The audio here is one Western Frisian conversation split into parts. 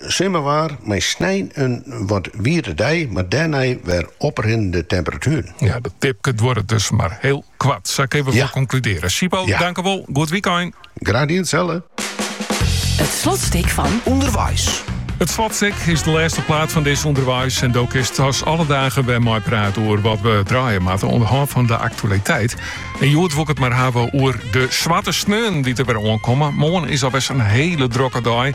Simmerwaar mei snein in wat wierde dei, mar dêrnei wer oprinnende temperatueren. Ja, dat dipke duorret dus mar hiel koart. Sa kinne we wol konkludearje. Sipo, dankewol. Goed wykein. Graach dien, itselde. It slotstik fan Underweis. It slotstik is de lêste plaat fan dizze Underweis en dû kinst as alle dagen wer meiprate oer wat we draaie moatte oan de hân fan de aktualiteit. En hjoed wol ik it mar hawwe oer de swarte sneon dy't der wer oankomme. Moarn is al reis in hiele drokke dei.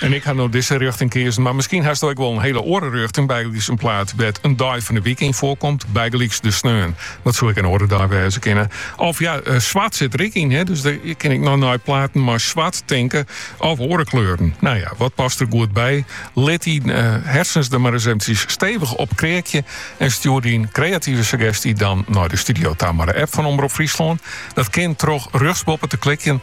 En ik ha no dizze rjochting keazen, mar miskien hasto ek wol in hiele oare rjochting, bygelyks in plaat dêr't in dei fan 'e wike yn foarkomt, bygelyks de sneon. Dat soe ek in oare dei wêze kinne. Of ja, swart sit der ek yn, dus dêr kinst ek noch nei platen mei swart tinke of oare kleuren. Nou ja, wat past der goed by? Lit dyn harsens der mar ris eventjes stevig op kreakje en stjoer dyn kreative suggestie dan nei de studio ta mei de app fan Omrop Fryslân. Dat kin troch rjochtsboppe te klikjen